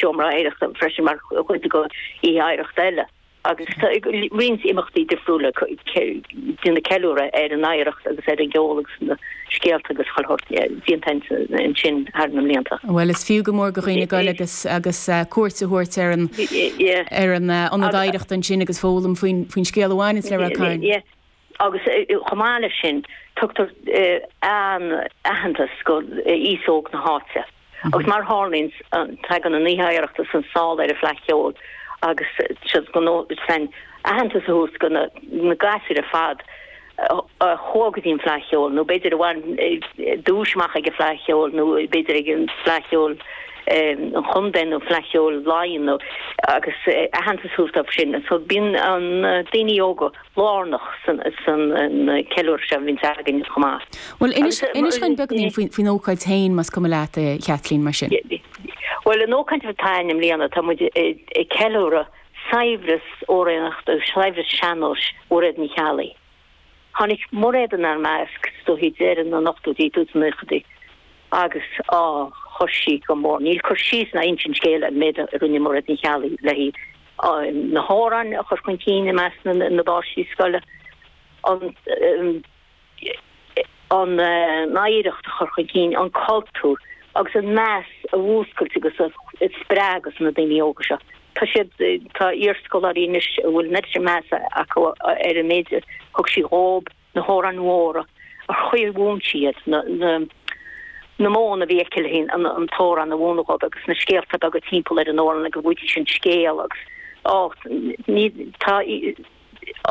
Seomra Oidhreachta freisin mar chuid de Oíche Oidhreachta le agus tá roinnt imeachtaí difriúla ag déanamh ceiliúradh ar an oidhreacht agus ar an gceol agus na scéalta agus déantáin ansin thar na mblianta. Bhuel, is fiú go mór do dhaoine dul agus cuairt a thabhairt ar an ionad oidhreachta ansin agus foghlaim faoin scéal a bhaineanns le Rath Cairn. agus chomh maith leis sin tugtar aitheantas go aos óg na háite agus mar tharlaíonn tagann an Oíche Oidhreachta sna sála ar an Fleadh Cheoil agus is iad go san aitheantas a thabhairt go na gasúir ar fad a chuaigh go dtí an Fleadh Cheoil nó b'fhéidir a bhain duais amach ag an Fleadh Cheoil nó b'fhéidir ag an Fleadh Cheoil an Chontae nó Fleadh Cheoil Laighean nó agus aitheantas a thabhairt dóibh sin so bíonn na daoine óga lárnach san ceiliúradh seo a bhíonn againn chomh maith. Bhuel, inis dúinn beagáinín faoin ócáid féin, más cuma leat, a Chaitlín, mar sin. Bhuel, an ócáid atá againn i mbliana, tá muid ag ceiliúradh saibhreas amhránaíochta agus saibhreas sean-nóis Mhairéad Ní Cheallaigh. Tháinig Mairéad inár measc is dóichí deireadh na n-ochtóidí, tús na nóchaidí agus á chuir sí go mór, níl cur síos ná insint scéil ar an méid a rinne Mairéad Ní Cheallaigh le. na hamhráin a chur chun cinn i measc na bpáistí scoile, an oidhreacht a chur chun cinn, an cultúr, agus an meas a mhúscailt agus a spreagadh sna daoine óga seo. Tá siad, tá iarscoláirí anois a bhfuil an oiread sin measa acu ar an méid a thug sí dhób, na hamhráin mhóra a chuir mhúin sí iad, na modhanna a bhí aici le an t-amhrán a mhúineadh dóibh agus na scéalta beaga timpeall ar an amhrán agus go dtuigfidís an scéal agus á ní tá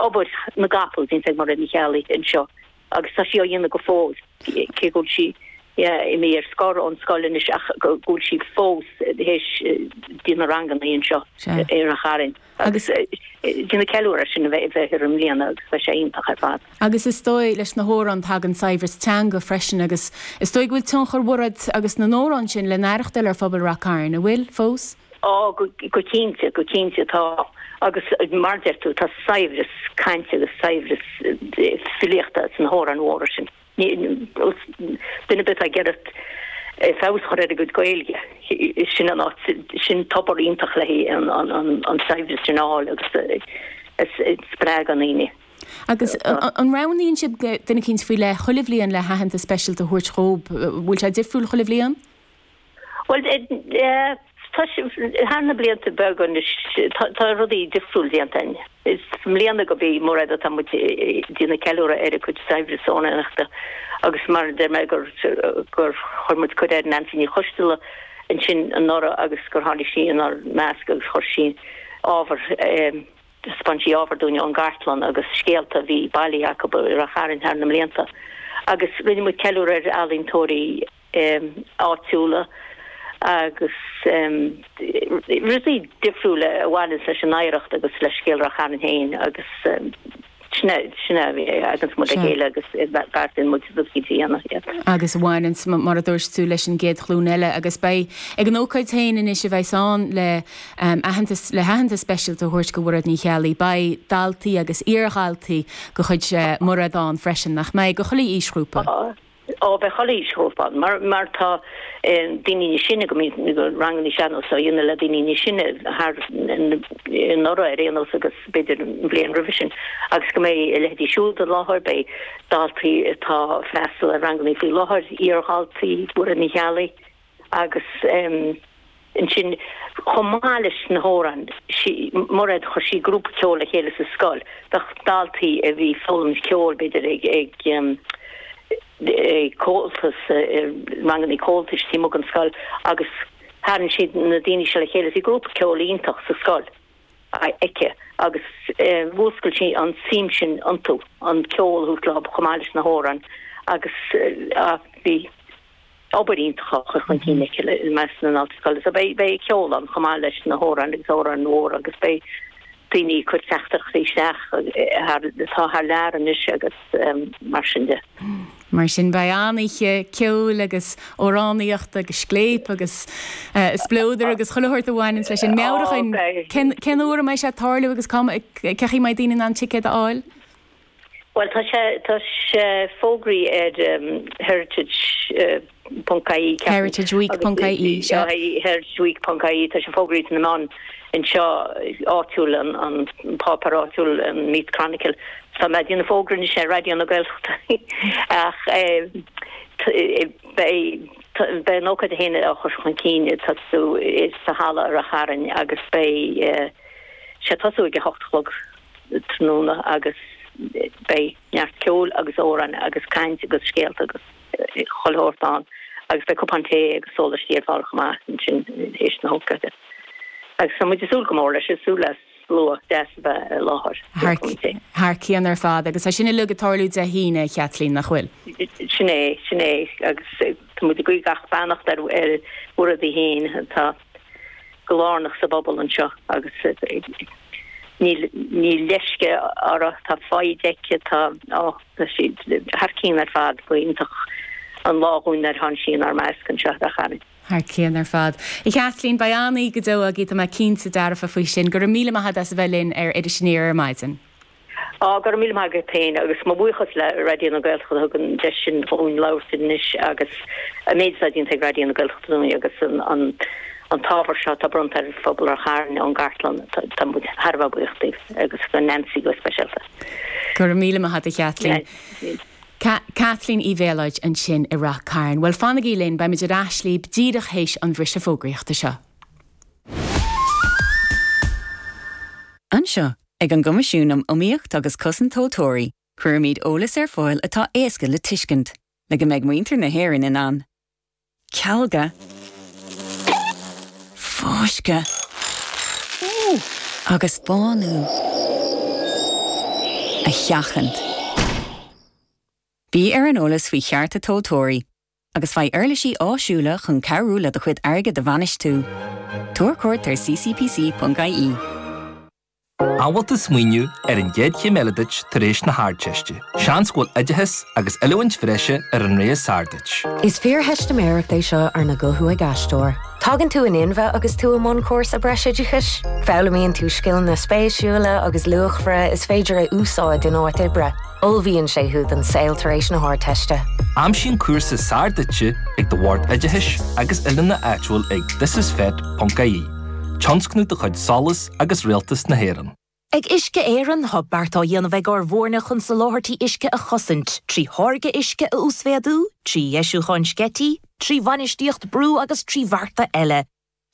obair na gcapall déanta ag Mairéad Ní Cheallaigh anseo agus tá sí á dhéanamh go fóill. cé go bhfuil sí imithe ar scor ón scoil anois ach go bhfuil sí fós ag déanamh na ranganna anseo i Ráth Chairn agus déanamh ceiliúradh ar sin a bheifear i mbliana agus beidh sé iontach ar fad. Agus is dóigh leis na hamhráin tagann saibhreas teanga freisin agus is dóigh go bhfuil tionchar Mhairéad agus na n-amhrán sin le n-aireachtáil ar phobal Rath Cairn, an bhfuil, fós? Ó, go cinnte, go cinnte tá agus mar a deir tú tá saibhreas cainte agus saibhreas filíochta sna hamhráin mhóra sin. Duine ar bith atá ag iarraidh feabhas a chur ar a gcuid Gaeilge, sin an áit, sin tobar iontach le an saibhreas sin a fháil agus a spreagadh in aoinne. Agus an roghnaíonn sibh duine eicínt faoi leith chuile bhliain le haitheantas speisialta a thabhairt dhób? Bhfuil sé difriúil chuile bhliain? Bhuel, thar na blianta beaga anuas tá rudaí difriúil déanta againn. I mbliana gurb í Mairéad atá muid ag déanamh ceiliúradh ar a cuid saibhreas amhránaíochta agus mar a deir mé gur chuir muid cuireadh ar Neansaí Ní Choisdealbha ansin anuraidh agus gur tháinig sí inár measc agus chuir sí ábhar, thaispeáin sí ábhar dúinn ón gcartlann agus scéalta a bhí bailithe acu a bhain le Ráth Chairn thar na mblianta agus rinne muid ceiliúradh ar ealaíontóirí áitiúla agus rudaí difriúla a bhaineanns leis an oidhreacht agus le scéal Ráth Chairn féin agus sin a bhí againns muid a chéile agus beartaíonn muid rud go dtí anna iad. Agus a bhaineanns, mar a dúirt tú, leis an gcéad ghlúin eile agus beidh ag an ócáid féin anois a bheas ann le aitheantas le haitheantas speisialta a thabhairt do Mhairéad Ní Cheallaigh, beidh daltaí agus iardhaltaí de chuid Mhairéad ann freisin, nach mbeidh? Ó chuile aoisghrúpa. ó beidh chuile aoisghrúpa ann mar tá daoine níos sine go mbíonn ranganna sean-nós á dhéanamh le daoine níos sine thar anuraidh ar aon nós agus b'fhéidir an bhliain roimhe sin agus go mbeidh a leithéidí siúd i láthair, beidh daltaí atá ag freastal ar ranganna faoi láthair, iardhaltaí, Mhairéad Ní Cheallaigh. agus ansin chomh maith leis na hamhráin Mairéad chuir sí grúpa ceoil le chéile sa scoil do dhaltaí a bhí ag foghlaim ceoil b'fhéidir ag Comhaltas ranganna Comhaltais timpeall an scoil agus tharraing siad na daoine seo le chéile bhí grúpa ceoil iontach sa scoil aici agus mhúscail sí an suim sin iontu an ceol chomh maith leis na hamhráin agus bhí. obair iontach á chur chun cinn aici i measc na ndaltaí scoile. So beidh beidh ceol ann chomh maith leis na hamhráin agus amhráin mhóra agus beidh daoine ag cur teachtaireachtaí isteach atá thar lear anois agus mar sin de. Mar sin beidh an-oíche ceoil agus amhránaíochta agus scléipe agus spleodair agus chuile shórt a bhaineanns leis sin. Meabhraigh dúinn cén uair a mbeidh sé ag tarlú agus cá mbeidh, cén chaoi a mbeidh daoine in ann ticéid a fháil? Bhuel, tá sé, tá sé fógraithe ar heritage ponc ie, ceapaim. Heritage Week ponc ie, sea. Aye, heritage week ponc ie, tá sé fógraithe sna meáin anseo áitiúil, an, an páipéar áitiúil, an Meath Chronicle, tá mé a' déanamh fógra anseo ar Raidió na Gaeltachta ach eh, beidh, beidh an ócáid féin á chur chun cinn ag tosú sa halla i Ráth Chairn agus beidh eh, sé tosú ag a hocht a chlog. tráthnóna agus beidh neart ceol agus amhráin agus caint agus scéalta agus 'chuile shórt ann agus beidh cupán tae agus sólaistí ar fáil chomh maith ansin théis na hócáide agus tá muid ag súil go mór leis, ag súil le slua deas a bheith i láthair. Thar cionn ar fad agus tá sin uilig ag tarlú Dé hAoine, a Chaitlín, nach bhfuil? Sin é, sin é agus tá muid ag guí gach beannacht ar bhur rudaí féin. Tá. go lárnach sa bpobal anseo agus níl leisce uirthi, tá foighid aici, tá thar cionn ar fad go hiontach an t-ádh dhúinn ar tháinig sí inár measc anseo a Chairn. Thar cionn ar fad. A Chaitlín, beidh an-oíche go deo agaibh, tá mé cinnte dearfa faoi sin. Go raibh míle maith agat as a bheith linn ar Iris Aniar ar maidin. Go raibh míle maith agat féin agus mo bhuíochas le Raidió na Gaeltachta a thug an deis sin dhúinn labhairt anois agus an méid atá déanta ag Raidió na Gaeltachta dúinn agus an t-ábhar seo atá bronnta ar phobal Ráth Chairn ón gcartlann, tá muid thar a bheith buíoch díobh agus do Neansaí go speisialta. Go raibh míle maith agat a Chaitlín. Caitlín Uí Mhéalóid ansin i Rath Cairn. Bhuel, fanaigí linn, beimid ar ais libh díreach théis an bhriseadh fógraíochta seo. Anseo Ag an gCoimisiún um Iomaíocht agus Cosaint Tomhaltóirí, cuirimid eolas ar fáil atá éasca le tuiscint, le go mbeidh muintir na hÉireann in ann cealga, fáisceadh agus bánú a sheachaint. Bí ar an eolas faoi chearta tomhaltóirí agus faigh uirlisí áisiúla chun cabhrú le do chuid airgid a bhainistiú. Tabhair cuairt ar ccpc.ie. Amhail is smaoineamh ar an gcéad chéim eile duit tar éis na hArdteiste? Seans go bhfuil oideachas agus oiliúint bhreise ar an tslí is fearr duit. Is fíortheistiméireacht é seo arna guthú ag aisteoir. Tagann tú in inmhe agus tú i mbun cúrsa breisoideachais. Foghlaimíonn tú scileanna spéisiúla agus luachmhara is féidir a úsáid in áit oibre. Ullmhaíonn sé thú don saol tar éis na hArdteiste. Aimsigh an cúrsa is fearr duit ag do Bhord Oideachais agus Oiliúna áitiúil ag thisisfet.ie, tionscnamh de chuid SOLAS agus Rialtas na hÉireann. Ag Uisce Éireann, tá beart á dhéanamh ag ár bhfoirne chun soláthairtí uisce a chosaint, trí tháirgeadh uisce a uasmhéadú, trí dheisiúcháin sceití, trí bhainistíocht brú agus trí bhearta eile.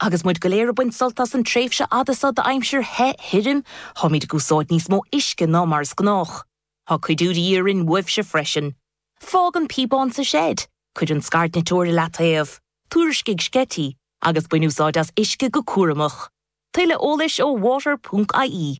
Agus muid go léir ag baint sult as an tréimhse fhada seo d'aimsir the thirim, táimid ag úsáid níos mó uisce ná mar is gnách. Tá cuidiú de dhíth orainn uaibhse freisin. Fág an píobán sa seid, cuir an scairtniteoir i leataobh, tuairiscigh sceití, agus bain úsáid as uisce go cúramach. Tuilleadh eolais ó water ponc ie.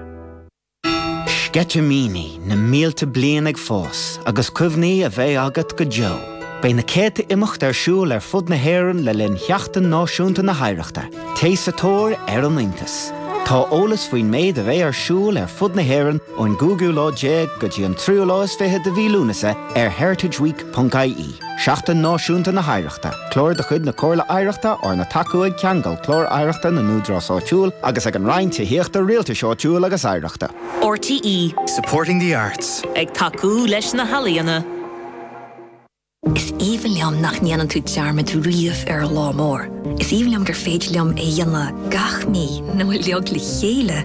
Sceitimíní na mílte bliain ag fás agus cuimhní a bheidh agat go deo. Beidh na céadta imeacht ar siúl ar fud na hÉireann le linn Sheachtain Náisiúnta na hOidhreachta. Téigh sa tóir ar an iontas! Tá eolas faoin méid a bheidh ar siúl ar fud na hÉireann ón gcúigiú lá déag go dtí an tríú lá is fiche de mhí Lúnasa ar heritageweek.ie. ie, Seachtain Náisiúnta na hOidhreachta, clár de chuid na Comhairle Oidhreachta arna thacú ag Ceangal Clár Oidhreachta na nÚdarás Áitiúil agus ag an Roinn Tithíochta, Rialtais Áitiúil agus Oidhreachta. RTÉ. Supporting the arts. Ag tacú leis na healaíona. Is aoibhinn liom nach ndéanann tú dearmad riamh ar an lá mór. Is aoibhinn liom gur féidir liom é dhéanamh gach mí nó uilig le chéile!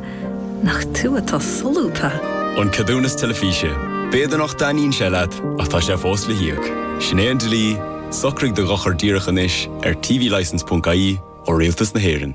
Nach tú atá solúbtha! An Ceadúnas Teilifíse, B'fhéidir nach dtaitníonn sé leat, ach tá sé fós le híoc. Sin é an dlí, socraigh do dhochar díreach anois ar tvlicense.ie ó Rialtas na hÉireann.